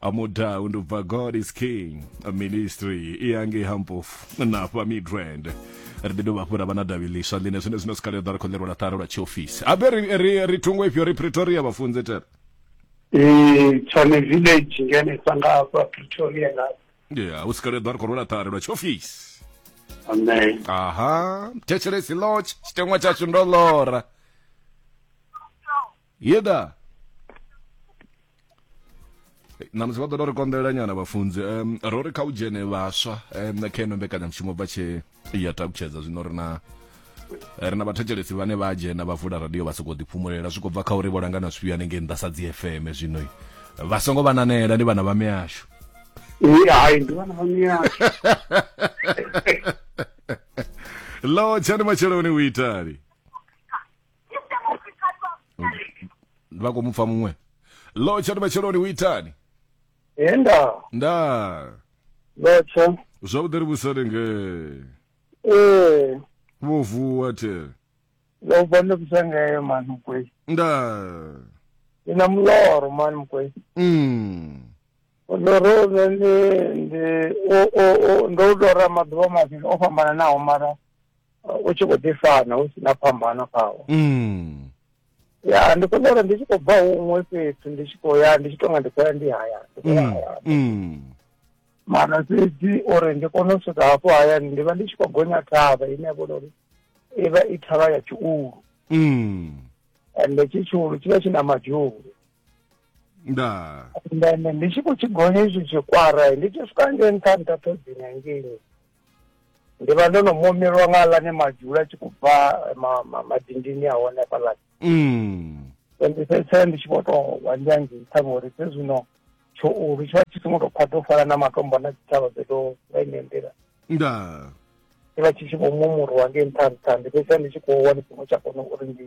amudau ndobva god is king ministry iyange hampofu napa midrand ri ḓi dovha hafhu ra vha na davhi ḽiswa ḽine zwine zwino sikale ḓa ri khou ḽerwa ḽa ṱari lwa tshiofisi abe ri, ri, ri thungo ifhio ri pretoria vhafunzi tere Eh, tshone village ngene sa nga hafha pretoria nga ya u sikale ḓa ri khou rwela ṱari lwa tshiofisi amen aha thetshelesi lodge tshiteṅwa tshashu ndo lora yeda na musi vha ḓo ri konḓelela nyana vhafunzi um, ro ri kha u dzhene vhaswa um, kha ino mbekanyamushumo bva tshe ya takutshedza zwino ri na ri na vhathetshelesi vhane vha dzhena vha vula radio vha sokou ḓiphumulela zwi khou bva kha uri vho langana zwifhio hanengei nnḓa sa dzi fm zwino vha songo vha nanela ndi vhana vha mihashu hai ndi vhana vha mihashu lo tshani matsheloni u itali vha khou mu pfa muṅwe lotsha ndi matsheloni u itani he nda nda lotsha zwavhuḓi ri vhusani nge ee vho vuwa the ndo bva ndo bvisa ngeyo mani mukwei nda ndi na muloro mani mukwei mm. muloro une ndi ndi o- o- o- ndo u lora maḓuvha mavhili o fhambananaho mara u tshi khou ḓi fana hu si na phambano khawo mm. ya ndi kona uri ndi tshi khou bva huṅwe fhethu ndi tshi khou ya ndi tshi tonga ndi khou ya ndi haya mm, mm. mara fhedzi uri ndi kone u swika hafho hayani ndi vha ndi tshi khou gonya thavha ine ya vhona uri i vha i thavha ya tshiulu mm. ende tshi tshiulu tshi vha tshi na madzhulu nda then ndi tshi khou tshi gonya izwi zwikwara ndi tshi swika ngei nṱha nṱha ṱhodzini hangei ndi vha ndo no momelwa nga aḽani madzula a tshi khou bva madindini a hone hafhaḽani mm. ndi fhedzisela ndi tshi vho tou wa ndi angei ṱhaṅwe uri zwe zwino tshoulu tshi vha tshi songo tou khwaṱha u fana na matombo na tshitshavha dzo tou nga ine nḓila nda ndi vha tshi tshi vho mumurwa ngei nṱha nṱha ndi fhedzisela ndi tshi khou wa ndi songo tsha kona uri ndi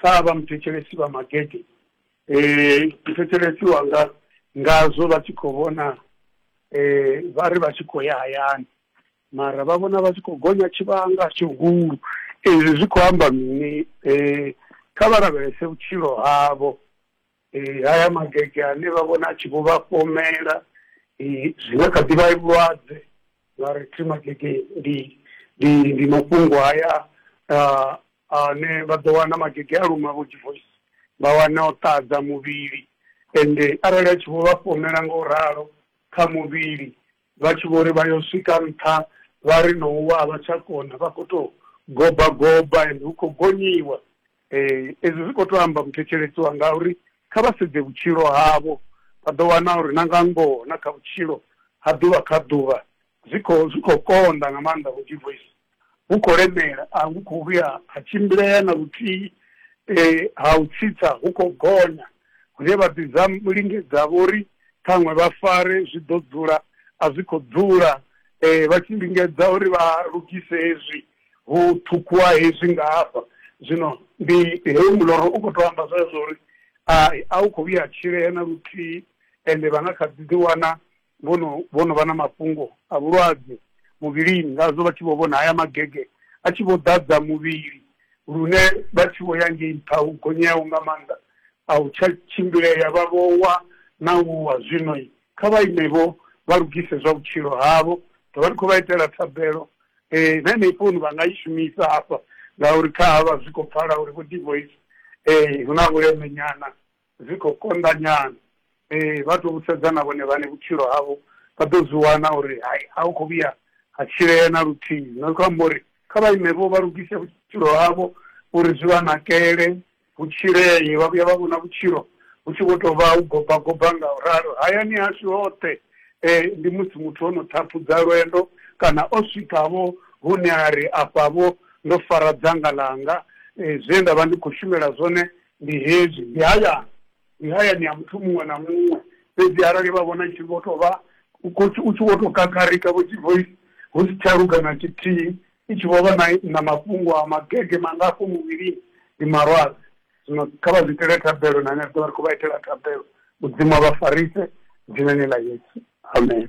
Kha vha muthetshelesi vha magede muthetshelesi wanga ngazwo vha tshi khou vhona vha ri vha tshi khou ya hayani mara vha vhona vha tshi khou gonya tshivhanga tshihulu ezwi zwi khou amba mini kha vha lavhelese vhutshilo havho eh, haya magege ane vha vhona a tshi vho vha fhomela eh, zwi nga kha ḓi vha vhulwadze vha ri thi magege ndi ndi ndi mafhungo haya ah, ane vha ḓo wana magege a luma vho divoice vha wana o ṱadza muvhili ende arali a tshi vho vha fhomela nga u ralo kha muvhili Vha tshi vho ri vha yo swika nṱha, vha ri no wa a vha tsha kona, vha khou tou goba goba ende hu khou gonyiwa. Ezwi zwi khou tou amba muthetshelesi wanga a uri kha vha sedze vhutshilo havho, vha ḓo wana uri na nga ngoho na kha vhutshilo ha ḓuvha kha ḓuvha zwi khou zwi khou konḓa nga maanḓa vho Divoice. hu khou lemela a hu khou vhuya ha tshimbilea na luthihi eh, ha u tsitsa hu khou gonya hune vha ḓi dza lingedza vho ri ṱhaṅwe vha fare zwi ḓo dzula a zwi khou dzula eh, vha tshi lingedza uri vha lugise hezwi hu ṱhukhuwa hezwi nga hafha zwino ndi heyo muloro u khou tou amba zwezwo uri a a u khou vhuya ha tshilea na luthihi ende vha nga kha ḓi ḓiwana vho no vho no vha na mafhungo a vhulwadze muvhilini ngazwo vha tshi vho vhona haya magege a tshi vho ḓadza muvhili lune vha tshi vho ya ngei nṱha hu gonyaho nga maanḓa a u tsha tshimbilea vha vho wa na u wa zwino kha vha ime vho vha lugise zwa vhutshilo havho ḓo vha ndi khou vha itela thabelo eh, na heneyi founu vha nga i shumisa hafha ngauri kha havha zwi khou pfala uri vho divoice um eh, hu na vhuleme nyana zwi khou konḓa nyana. Ee, vha tou sedza na vhone vhaṋe vhutshilo havho vha ḓo zwi wana uri hai, a hu khou vhuya ha tshilea na luthihi. Zwino zwi khou amba uri kha vha ime-vho vha lugise vhutshilo havho uri zwi vha nakele, hu tshilee. Vha vhuya vha vhona vhutshilo vhu tshi vho tou vha u goba goba nga u ralo. Hayani hashu hoṱhe ndi musi muthu o no ṱhaphudza lwendo kana o swika-vho hune a ri afha-vho ndo fara dzanga ḽanga, zwe nda vha ndi khou shumela zwone ndi hezwi, ndi hayani, ndi hayani ha muthu muṅwe na muṅwe, fhedzi arali vha vhona tshi vho tou vha, u khou, u tshi vho tou kakarika vho tshi bvoi, hu si tsha luga na tshithihi, i tshi vho vha na, na mafhungo a magege mangafho muvhilini, ndi malwadze. Zwino kha vha zwi itele thabelo, na henefho vha ri khou vha itela thabelo, Mudzimu a vha farise, Dzinani ḽa Yesu. Amen.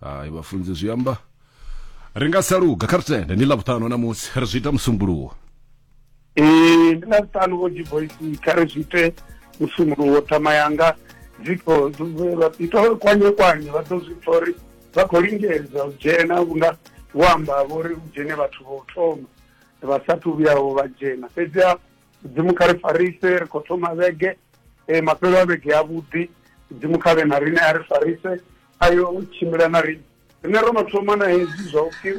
hayi vhafunzi zwi amba ri nga sa luga kha ri tende ndi ḽavhuṱanu namusi ri zwi ita musumbulowo ee ndi ḽavhuṱanu vho divoisi kha ri zwi ite musumbulowo thama yanga dzikho ita kwanye kwanye vha ḓo zwi pfa uri vha khou lingedza u dzhena vhunga vho amba vho ri u dzhene vhathu vho thoma vha sathu vhuyaho vha dzhena fhedziha mudzimu kha ri farise ri khou thoma vhege e, mafhelo a vhege avhuḓi mudzimu kha vhe na rine a ri farise ayo u tshimbila na rine rine ro no thoma na hezwi zwa upfhi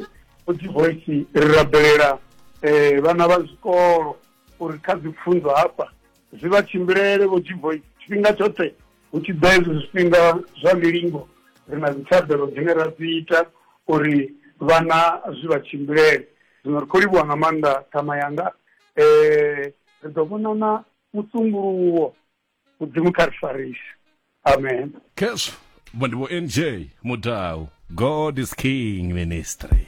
udzi voice ri rabelela um vhana vha zwikolo uri kha dzi pfunzo hafha zwi vha tshimbilele vho dzi voice tshifhinga tshoṱhe hu tshi ḓa hezwi zwifhinga zwa milingo ri na dzithabelo dzine ra dzi ita uri vhana zwi vha tshimbilele zwino ri khou livhuwa nga maanḓa ṱhama yanga um ri ḓo vhonana musumbuluwo mudzimu kha ri farise amen khezwo vho ndi vho nj mudau god is king ministry